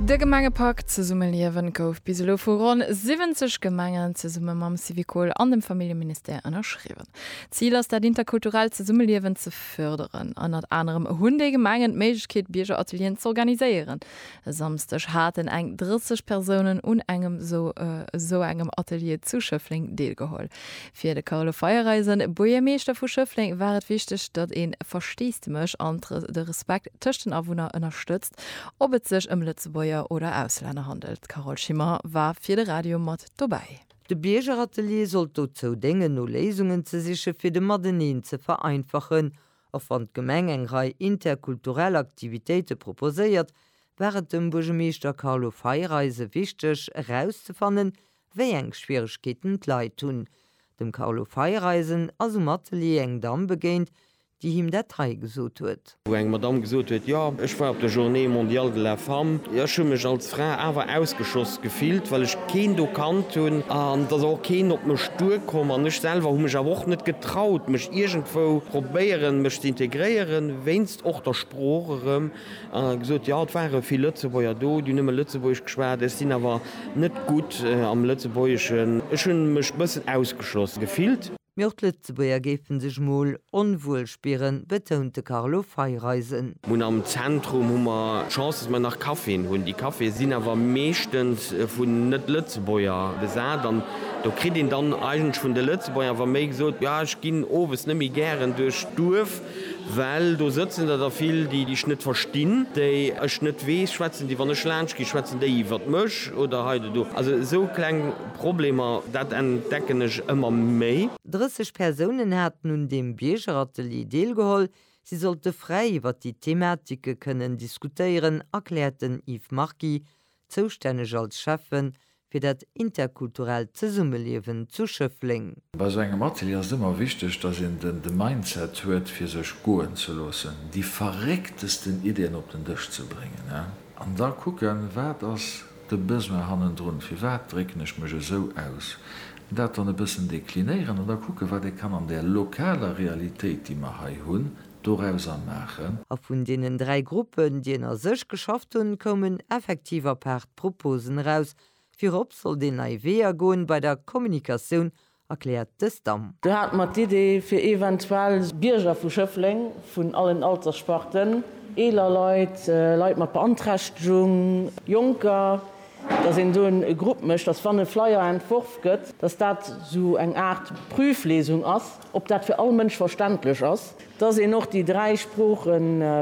De Gemengepak Zesummeliewen gouf bis elo vu ronn 70 Gemengen zesumme mam Syvicol an dem Familljeministère ënnerschriwwen. Zil ass dat interkulturellt Zesummeliewen ze fërderen. Ënnert anerem hunn déi Gemengen d'Méiglechkeet Biergeratelieren z'organiséieren. E Samsdeg haten eng 30 Persounen un engem esou engem Atelier zu Schëffleng deelgeholl. Fir de Carlo Feiereisen, Buergermeeschter vu Schëffleng, war et wichteg, datt ee Versteesdemech an de Respekt tëscht den Awunner ënnerstëtzt, ob et sech ëm Lëtzebuerger oder Auslänner handelt. D'Carole Schimmer war fir de Radio mat dobäi. De Biergeratelier sollt dozou déngen, no Léisungen ze siche fir de Mateneen ze vereinfachen. Och wann d'Gemeng eng Rei interkulturell Aktivitéite proposéiert, war et dem Buergermeeschter Carlo Feiereisen wichteg erauszefannen, wéi eng Schwieregkeeten d'Leit hunn. Dem Carlo Feiereisen ass um Atelier eng Damm begéint, déi him dat hei gesot huet. Wou eng Madamm gesot huet, Jo, ech war op der Journée Mondiale de la Femme. Ech hu mech als Fra awer ausgeschoss gefillt, well ech keen do kannt hunn. An et ass och keen op mech duerkomm. An ech selwer hu mech awer och net getraut, mech iergendwou probéieren, mech ze integréieren, wéinst och der Sprooch erëm. An hat gesot, jo, et ware vill Lëtzebuerger do, déi nëmme Lëtzebuergesch geschwat, ech sinn awer net gutt am Lëtzebuergeschen, ech hu mech bëssen ausgeschloss gefillt. Mee och d'Lëtzebuerger géife sech mol onwuel spieren, betount de Carlo Feiereisen. Mun am Zentrum hu mer d'Chance, datt mer nach Caféen hunn. Déi Caféë sinn awer meeschtens vun Net-Lëtzebuerger besat an do kritt een dann eigentlech vun de Lëtzebuerger awer méi gesot, jo, ech ginn owes net méi gären duerch d'Duerf. Well do sëtzen der da vill, déi dech net verstinn, déi ech net weess, schwätzen déi, wann ech laanscht ginn, schwätzen déi iwwert mech oder heiduerno. Also esou kleng Problemer, dat entdecken ech ëmmer méi. 30 Persounen haten un deem Biergeratelier deelgeholl. Si sollte fräi iwwert déi Thematike kënnen diskutéieren, erkläert den Yves Margy. zoustänneg als Schäffe fir dat interkulturellt Zesummeliewen zu Schëffleng. Bei sou engem Atelier ass et ëmmer wichteg, dass een den de Mindset huet fir sech goen ze loossen, déi verrécktesten Ideen op den Dësch ze bréngen an da kucken, wat ass de Besoin hannendrun, firwat drécken ech mech esou aus, an dat dann e bëssen deklinéieren an da kucken, wat ee kann an där lokaler Realitéit, déi mer hei hunn, dorauser maachen. A vun deenen dräi Gruppen, déi ënner sech geschafft hunn, koumen effektiv apaart Proposen eraus. Virop sollt een nei Weeër goen bei der Kommunikatioun, erkläert de STAM. Do hate mer d'Idee, fir eventuell Bierger vu Schëffleng, vun allen Alterssparten, eeler Leit, Leit mat Beanträchtegung, Jonker, dass een do e Grupp mécht, dass, wann e Flyer entworf gëtt, dass dat esou eng Aart Prüflesung ass. Ob dat fir all Mënsch verständlech ass? Dass een och déi dräi Sprooche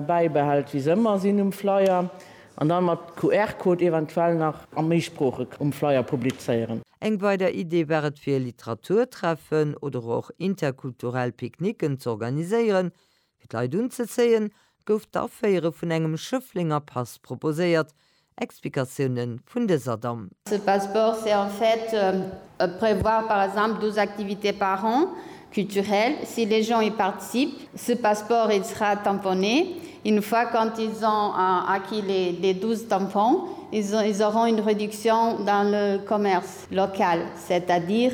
bäibehält, wéi se ëmmer sinn um Flyer, an dann mat QR-Code eventuell nach a méi Sprooche um Flyer publizéieren. Eng weider Idee war et fir Literaturtreffen oder och interkulturell Picknicken z'organiséieren, Fir d'Leit unzezéien, gouf d'Aféiere vun engem Schëfflenger Pass proposéiert. Explikatioune vun dëser Damm. Ce passeport c'est en fait prévoir par exemple 12 activités par an culturelles si les gens y participent ce passeport il sera tamponné une fois quand ils ont acquis les 12 tampons ils auront une réduction dans le commerce local c'est à dire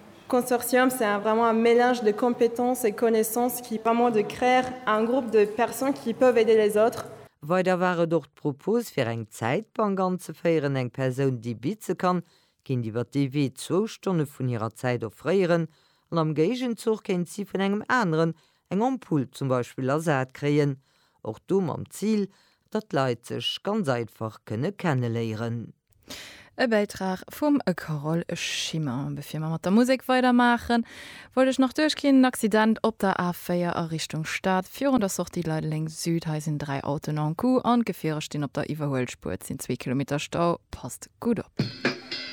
Consortium c'est un vraiment un mélange de compétences et connaissances qui permet de créer un groupe de personnes qui peuvent aider les autres. Weider war et och d'Propos fir eng Zäitbank anzeféieren, eng Persoun déi bitze kann, kéint iwwer dee Wee zwou Stonne vun hirer Zäit offréieren an am Géigenzuch kéint si vun engem aneren eng Ampull zum Beispill ersat kréien, och do mam Zil, datt d'Leit sech ganz einfach kënne kenneléieren. E Bäitrag vum Carole Schimmer. Bevir mer mat der Musek weidermaachen, wollt ech nach duerchginn, en Accident op der A4 a Richtung Stad. Virun der Sortie Leideleng Süd, hei sinn dräi Autoen en coup an d'Gefierer stinn op der Iwwerhuelspuer. Et sinn zwee Kilometer Stau, passt gutt op.